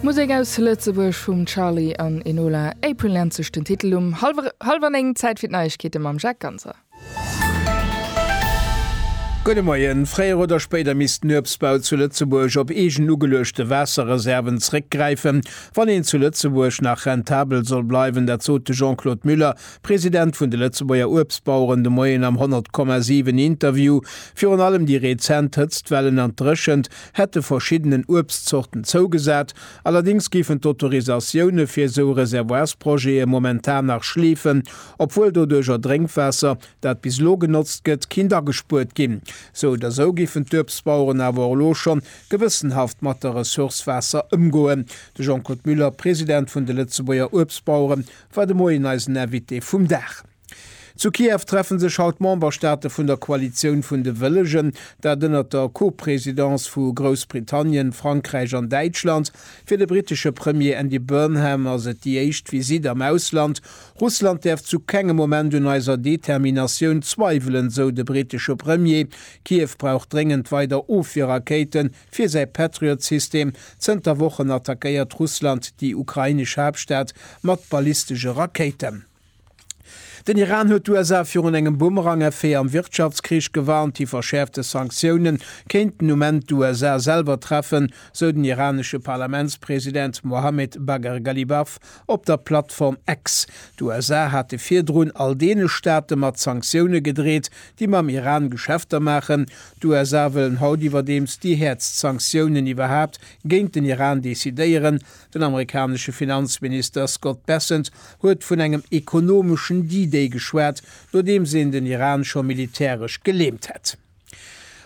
Musek aus Lëtzebuerg vum Charly an Enola, April nennt sech den Titel. Um hallwer néng, Zäit fir d'Neiegkeete mam Jacques Ganser. Gudde Moien. Fréier oder spéider misst den Uebstbau zu Lëtzebuerg op eegen ugeluechte Waasserreserven zréckgräifen, wann een zu Lëtzebuerg nach rentabel soll bleiwen. Dat sot de Jean-Claude Muller, President vun de Lëtzebuerger Uebstbaueren, de Moien am 100,7 Interview. Virun allem déi rezent Hëtztwellen an d'Dréchent hätte verschiddenen Uebstzorten zougesat, allerdéngs géifen d'Autorisatioune fir esou Reservoirsprojete momentan nach schleefen, obwuel doduercher Drénkwaasser, dat bis elo genotzt gëtt, kinnt agespuert ginn. Sou oder sou géifen d'Uebstbaueren awer och elo scho gewëssenhaft mat der Ressource Waasser ëmgoen. De Jean-Claude Muller, President vun de Lëtzebuerger Uebstbauere war de Moien eisen Invité vum Dag. Zu Kiew treffe sech haut d'Memberstaate vun der Koalitioun vun de Wëllegen, dat ënnert der Co-Presidence vu Groussbritannien, Frankräich an Däitschland. Fir de brittesche Premier Andy Burnham ass et déi éischt Visitt am Ausland. Russland däerf zu kengem Moment un eiser Determinatioun zweiwelen, sou de brittesche Premier. Kiew brauch dréngend weider Ofwierrakéite fir säi Patriot-System. Zënter Wochen attackéiert Russland déi ukrainesch Haaptstad mat ballistesche Rakéiten. Den Iran huet d'USA virun engem Bumerang-Effet am Wirtschaftskrich gewarnt. Déi verschäerfte Sanktioune kéinten um Enn d'USA selwer treffen, sou den iranesche Parlamentspresident Mohammed Bagher Ghalibaf op der Plattform X. D'USA hate virdrun all deene Staate mat Sanktioune gedreet, déi mam Iran Geschäfter maachen. D'USA wëllen haut iwwerdeems déi häertst Sanktiounen iwwerhaapt géint den Iran decidéieren, Den amerikanesche Finanzminister Scott Bessent huet vun engem ekonomeschen D-Day geschwat, nodeems een den Iran scho militäresch gelähmt hätt.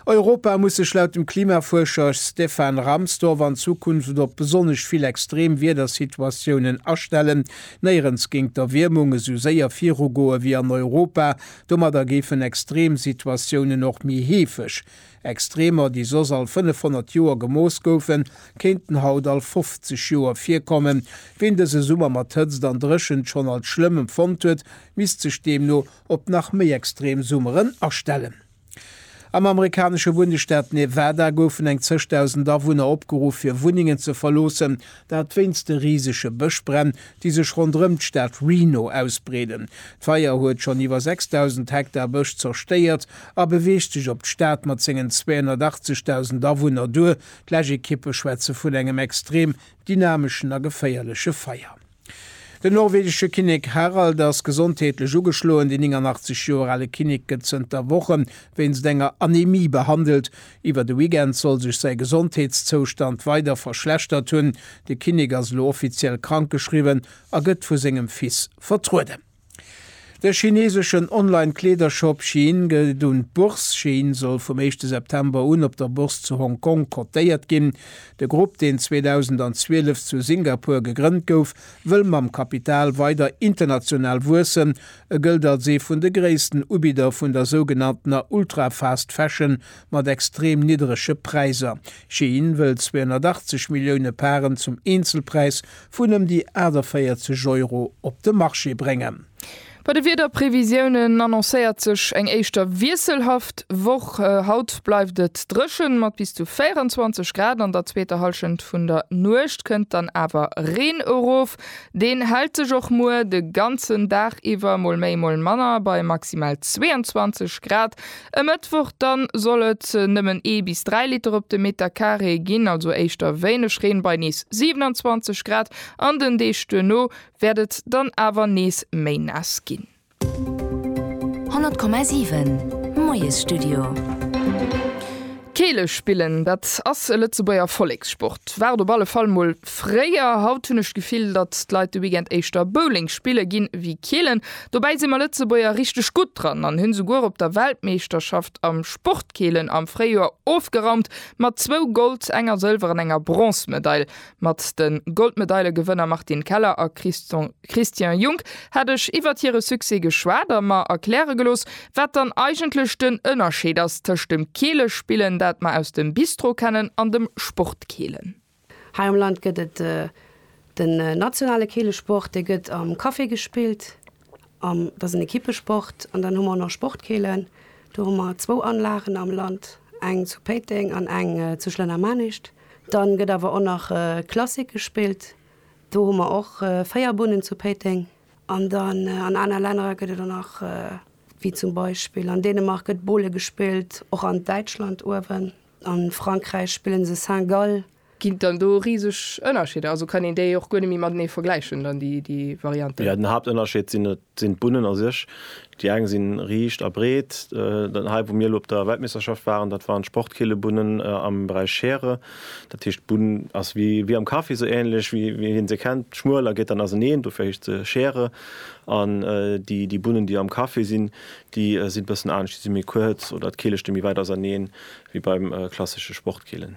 Europa muss sech laut dem Klimafuerscher Stefan Rahmstorf an Zukunft op besonnesch vill extrem Wiedersituatiounen astellen. Néierens géing d'Erwiermung esou séier virugoe wéi an Europa. Domadder géifen extrem Situatiounen och méi heefeg. Extremer, déi soss all 500 Joer gemooss goufen, kéinten haut all 50 Joer virkommen. Ween dëse Summer mat Hëtzt an Dréchent schonn als schlëmm empfonnt huet, misst sech deemno op nach méi extrem Summeren astellen. Am amerikanesche Bundesstaat Nevada goufen eng zeg dausend Awunner opgeruff, fir Wunnengen ze verloossen, Dat wéinst de risege Bëschbränn, déi sech ronderëm d'Stad Reno ausbreeden. D'Feier huet schonn iwwer 6.000 Hektar Bësch zerstéiert a beweegt sech op d'Stad mat sengen 280.000 Awunner duer. D'Lech-Ekippe schwätze vun engem extrem dynameschen a geféierleche Feier. Den norwegesche Kinnek Harald ass gesondheetlech ugeschloen. Den 89 Joer ale Kinnek gëtt zënter Woche wéinst enger Anemie behandelt. Iwwer de Weekend soll sech säi Gesondheetszoustand weider verschlechtert hunn. De Kinnek ass elo offiziell krankgeschriwwen a gëtt vu sengem Fils vertrueden. De chineseschen Online-Kleedershop Shein geet un d'Bourse. Shein soll vum éischte September un op der Bourse zu Hong Kong cotéiert ginn. De Grupp, deen 2012 zu Singapur gegrënnt gouf, wëll mam Kapital weider international wuessen, E gëllt als ee vun de gréissten Ubidder vun der sougenanntener Ultra-Fast Fashion mat extrem nidderege Präiser. Shein wëllt 280 Millioune Paren zum Eenzelpräis vun ëm déi 48 Euro op de Marché bréngen. Bei de Wiederprevisiounen annoncéiert sech eng éischter wiesselhaft Woch. Haut bleift et dréchen, mat bis zu 24 Grad. An der zweeter Hallschent vun der Nuecht kënnt dann awer Reen erof. Deen hält sech och muer de ganzen Dag iwwer mol méi mol manner bei maximal 22 Grad. E Mëttwoch dann soll et nëmmen ee bis dräi Liter op de Meter Carré ginn, also éischter wéineg Reen bei nees 27 Grad an den Deeg duerno wäert et dann awer nees méi naass ginn. 100,7 Moiesstudio. Keele spillen, dat ass e Lëtzebuerger Vollekssport. War et op alle Fall mol fréier. Haut hunn ech d'Gefill, datt d'Leit de Weekend éischter Bowling spille ginn, ewéi keelen. Dobäi si mer Lëtzebuerger richteg gutt dran an hunn souguer op der Weltmeeschterschaft am Sportkeelen am Fréijoer ofgeraumt mat zwou Gold-, enger Sëlwer an enger Bronzmedail. Mat de Goldmedailegewënner Martine Keller a Christian. Christian Junck, Hätt ech iwwert hire Succès geschwat a mer erkläre gelooss, wat dann eigentlech den Ënnerscheed ass tëscht dem Keelespillen, dat mer aus dem Bistro kennen, an dem Sportkeelen. Hei am Land gëtt et den nationale Keelesport, dee gëtt am Café gespillt, an dat ass en Ekippesport. An dann hu mer och nach Sportkeelen, do hu mer zwou Anlagen am Land, eng zu Péiteng an eng zu Schlennermanischt. Dann gëtt awer och nach Klassik gespillt, Do hu mer och véier Bunnen zu Péiteng. An dann an aner Lännerer gëtt et der nach, wéi zum Beispill an Dänemark gëtt Bowle gespillt, och an Däitschland uewen, a Frankräich spillen se Saint-Gall. Ginn et dann do riseg Ënnerscheeder? Also kann een déi och guer net méi matenee vergläichen dann, déi Varianten? Jo, den Haaptënnerscheed sinn et Et sinn d'Bunnen a sech, déi eng si riicht a breet, hei wou mir elo op der Weltmeeschterschaft waren, dat waren d'Sportkeelebunnen am Beräich Schere. Dat heescht d'Bunn ass wéi am Kaffi, esou änlech wéi een se kennt, schmuel a geet dann auseneen, dofir heescht se Schere. An déi Bunnen déi am Kaffi sinn, déi si bëssen anescht, déi si méi kuerz oder d'Keele sti méi wäit auseneen wéi beim klassesche Sportkeelen.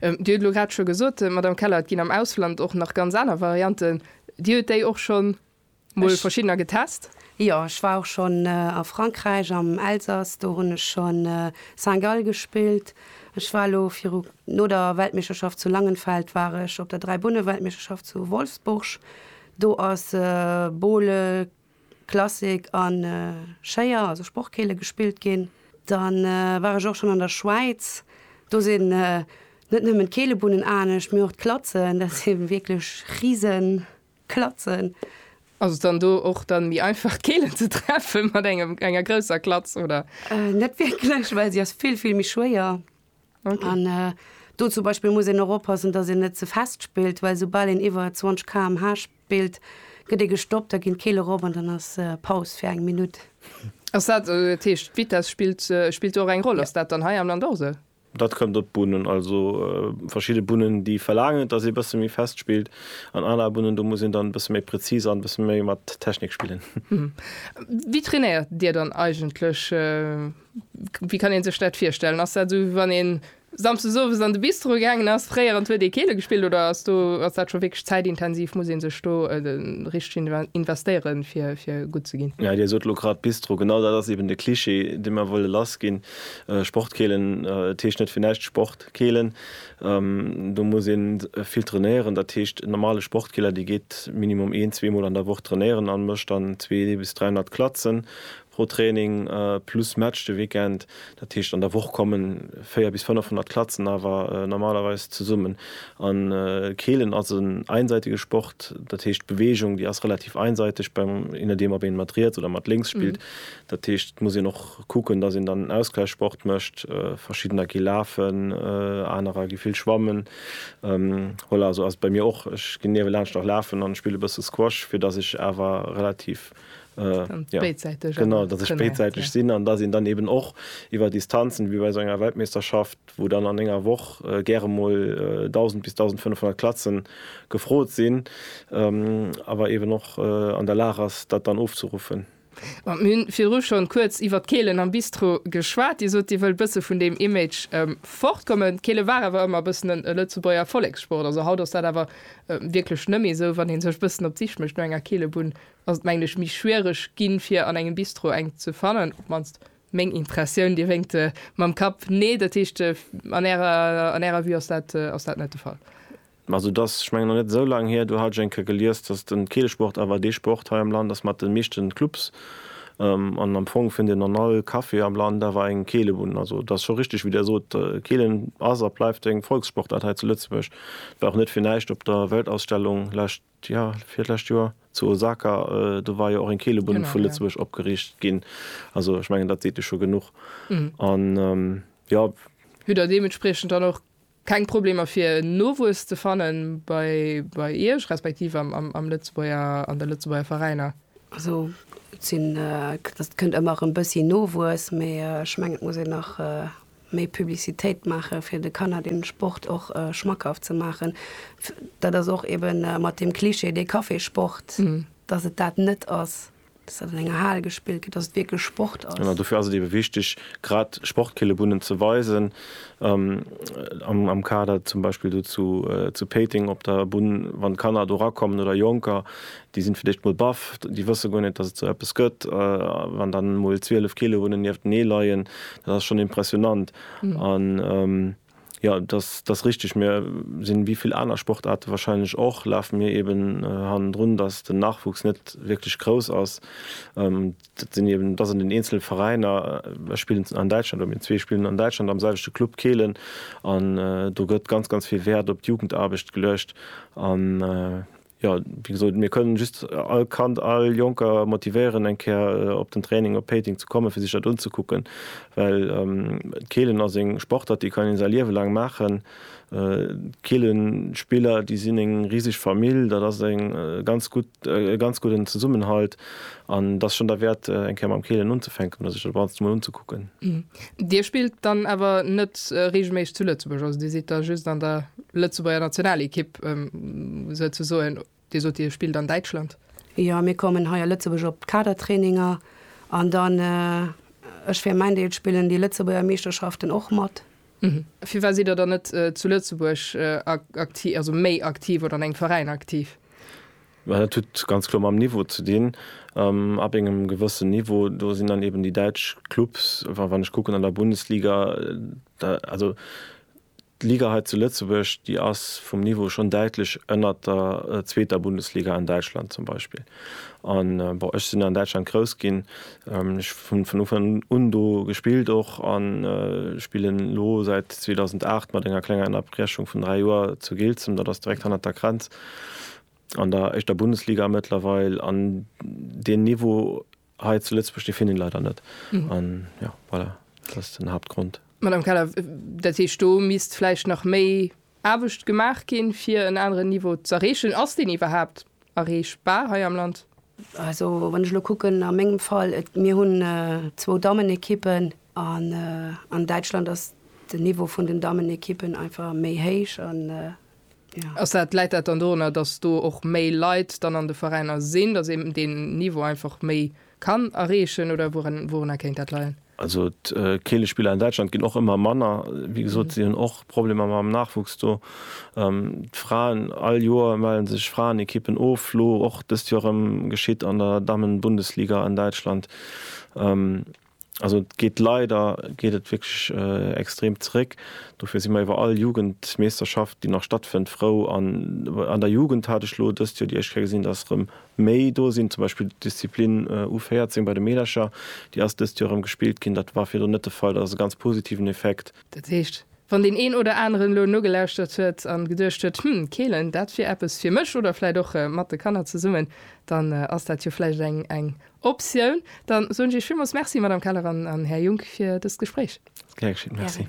Dir huet elo grad scho gesot, Madame Keller, et ginn am Ausland och nach ganz aner Varianten. Dir huet déi och schonn Mol verschiddener getest? Jo, ech war och schonn a Frankräich, am Elsass, do hunn ech scho Saint-Gall gespillt. Ech war elo viru, no der Weltmeeschterschaft zu Langenfeld war ech op der Dräibunne-Weltmeeschterschaft zu Wolfsburg. Do ass Bowle, Klassik a Schéier, also Sportkeele gespillt ginn. Dann war ech och schonn an der Schwäiz. Do sinn net nëmmen d'Keelebunnen anescht, mee och d'Klatzen, dat si wierklech Risen. Klatzen. Ass et dann do och dann méi einfach d'Keelen ze treffen mat engem enger grousser Klatz oder? Net wierklech, well se ass vill vill méi schwéier an do zum Beispill muss een och oppassen, dass een net ze fest spillt, well soubal een iwwer 20 kmh spillt, gëtt ee gestoppt, da ginn d'Keele rop an dann ass Paus fir eng Minutt. Ass dat, dat heescht d'Vitess spillt spillt do och eng Roll? Ass dat dann hei am Land och esou? Dat kënnt op d'Bunnen. Also verschidde Bunnen, déi verlaangen, dass ee bësse méi fest spillt, an aner Bunnen, do muss een dann e bësse méi präzis an e bësse méi mat Technik spillen. Wéi trainéiert Dir dann eigentlech? Wéi kann ee sech dat virstellen? Ass dat esou, wéi wann ee samsdes owes an de Bistro gaangen ass, fréier, an huet ee Keele gespillt? Oder ass do, ass dat scho wierklech zäitintensiv? Muss ee sech do richteg investéieren, fir gutt ze ginn? Dir sot elo grad Bistro. Genau dat ass eeben de Cliché, dee mer wëlle lassginn. Sportkeelen, et heescht net fir näischt Sportkeelen. Do muss ee vill trainéieren. Dat heescht en normale Sportkeeler, dee geet minimum een, zwee Mol an der Woch trainéieren a mécht dann zwee bis 300 Klatzen pro Training, plus Match de Weekend. Dat heescht an der Woch komme véier bis 500 Klatzen awer normalerweis zesummen. A Keelen ass en einseitege Sport, dat heescht d'Beweegung, déi ass relativ einseiteg beim, je nodeem ob ee mat riets oder mat lénks spillt. Dat heescht, et muss een och kucken, datt een dann Ausgläichssport mécht. Verschiddener gi lafen, anerer gi vill schwammen. Voilà, esou ass et bei mir och. Ech ginn niewelaanscht nach lafen an spille bësse Squash, fir datt ech awer relativ, jo, genau, datt ech béidsäiteg sinn an datt een dann eeben och iwwer Distanzen, wéi bei esou enger Weltmeeschterschaft, wou dann an enger Woch gäre mol 1.000 bis 1.500 Klatzen gefrot sinn, awer eeben och an der Lag ass, dat dann ofzeruffen. Bon, mir hunn virdru schonn kuerz iwwert d'Keelen am Bistro geschwat. Dir sot, Dir wëllt bëssen vun deem Image fortkommen. D'Keele war awer ëmmer e bëssen e Lëtzebuerger Erfollegssport. Also haut ass dat awer wierklech net méi esou. Wann ee sech bëssen op d'Sich mécht no enger Keelebunn, ass et mengen ech méi schwiereg ginn, fir an engem Bistro eng ze fannen. Op d'mannst meng Impressioun. Dir wénkt mam Kapp, Nee, dat heescht an Ärer Vue ass dat net de Fall. Also et ass, ech mengen, nach net esou laang hier, do hat ech eng Kéier gelies, datt den Keelesport awer dee Sport hei am Land ass mat de meeschten Clubs. An am Fong fënnt een an all Café am Land awer eng Keelebunn. Also et ass scho richteg, wéi Der sot, Keelen ass a bleift eng Volkssportart hei zu Lëtzebuerg. Et war och net fir näischt op der Weltausstellung lescht, jo, virlescht Joer zu Osaka, do war jo och eng Keelebunn vu Lëtzebuerg opgeriicht ginn. Also ech mengen, dat seet jo scho genuch. An, jo. Hutt Der deementspriechend dann och Keng Problemer fir Nowuess ze fannen bei Iech, respektiv am Lëtzebuerger, an de Lëtzebuerger Veräiner? Also et sinn, et kënnt ëmmer erëm bëssi Nowuess, mee ech mengen et muss een nach méi Publicitéit maache fir de Kanner den Sport och schmackhaft ze maachen. Dat ass och eben mat dem Klischee dee Kaffeesport, dass et dat net ass. dass dat an enger Hal gespillt gëtt, dass et wierklech Sport ass. Genau, dofir ass et eebe wichteg, grad Sportkillebunnen ze weisen. Am Kader zum Beispill do zu Péiteng op der Bunn, wann d'Kanner do erakommen oder Jonker, déi sinn fir d'éischt emol baff, déi wësse guer net, dass et esou eppes gëtt. Wann dann emol 12 Killebunnen nieftenee leien, dat ass schonn impressionant. Jo, dass dass richteg. Mir sinn wéi vill aner Sportaarte wahrscheinlech och, lafe mir eben hannendrun, dass den Nachwuchs net wierklech grouss ass. Dat sinn eben dass an den eenzele Veräiner, ech spillen an Däitschland oder mir zwee spillen an Däitschland am selwechte Club Kehlen an do gëtt ganz ganz vill Wäert op d'Jugendaarbecht geluecht an Jo, wéi gesot, mir kënnen just all Kand, all Jonker motivéieren, eng Kéier op den Training op Péiteng ze kommen, fir sech dat unzekucken, well d'Keelen ass eng Sportart, déi kann ee säi Liewe laang maachen. D'Keelenspiller, déi sinn eng riseg Famill, dat ass e ganz gudden Zesummenhalt. An et ass schonn derwäert, eng Kéier mam Keelen unzefänken oder sech dat Ganzt emol unzekucken. Dir spillt dann awer net reegelméisseg zu Lëtzebuerg, also Dir sidd da just an der Lëtzebuerger Nationalekipp souzesoen. Dir sot, Dir spillt an Däitschland. Jo, mir kommen hei a Lëtzebuerg op d'Kadertraininger. An dann, ech fir mäin Deel, spillen déi Lëtzebuerger Meeschterschaften och mat. Firwat sidd Der dann net zu Lëtzebuerg aktiv, also méi aktiv oder an engem Veräin aktiv? Mä dat huet ganz kloer mam Niveau ze dinn. Ab engem gewëssen Niveau, do sinn dann eben déi däitsch Clubs, wa, wann ech kucken an der Bundesliga, da, also d'Liga hei zu Lëtzebuerg, déi ass vum Niveau schonn däitlech ënnert der zweeter Bundesliga an Däitschland zum Beispill. An, bon, ech sinn an Däitschland grouss ginn, ech hunn vun Ufank un do gespillt och an spillen elo säit 2008, mat enger klenger Ënnerbrechung vun dräi Joer, zu Giltzem, dat ass direkt hannert der Grenz. An der éischter Bundesliga mëttlerweil, an deen Niveau hei zu Lëtzebuerg, dee finn een leider net. An jo, voilà, dat ass den Haaptgrond. Madame Keller, dat heescht, do misst vläicht nach méi Aarbecht gemaach ginn, fir en aneren Niveau z'erreechen. Ass deen iwwerhaapt erreechbar hei am Land? Also, wann ech elo kucken a mengem Fall, et, mir hunn zwou Dammenekippen, an an Däitschland ass den Niveau vun den Dammenekippen einfach méi héich, an Ass dat, läit dat dann dorunner, datt do och méi Leit dann an de Veräiner sinn, datt een deen Niveau einfach méi kann erreechen oder wourunner kéint dat leien? Also d'Keelespiller an Däitschland ginn och ëmmer manner. Wéi gesot, si hunn och Problemer mam Nachwuchs do. D'Fraen, all Joer melle sech Fraenekippen of, elo och dëst Joer erëm, geschitt an der Dammenbundesliga an Däitschland. Also et geet leider geet et wierklech extrem zeréck. Dofir si mer iwwer all Jugendmeeschterschaft, déi nach stattfënnt, frou. An an der Jugend hat ech elo dëst Joer déi éischt Kéier gesinn, datt erëm méi do sinn. Zum Beispill d'Disziplin U14 bei de Meedercher, déi ass dëst Joer erëm gespillt ginn. Dat war virdrun net de Fall. Dat ass e ganz positiven Effekt. Dat heescht, wann deen een oder aneren elo nogelauschtert huet a geduecht huet, Hm, Keelen, dat wier eppes fir mech oder vläicht och mat de Kanner zesummen, dann ass dat jo vläicht eng Optioun. Dann soen ech Iech villmools Merci, Madame Keller an Här Junk, fir dëst Gespréich. Gär geschéet. Merci.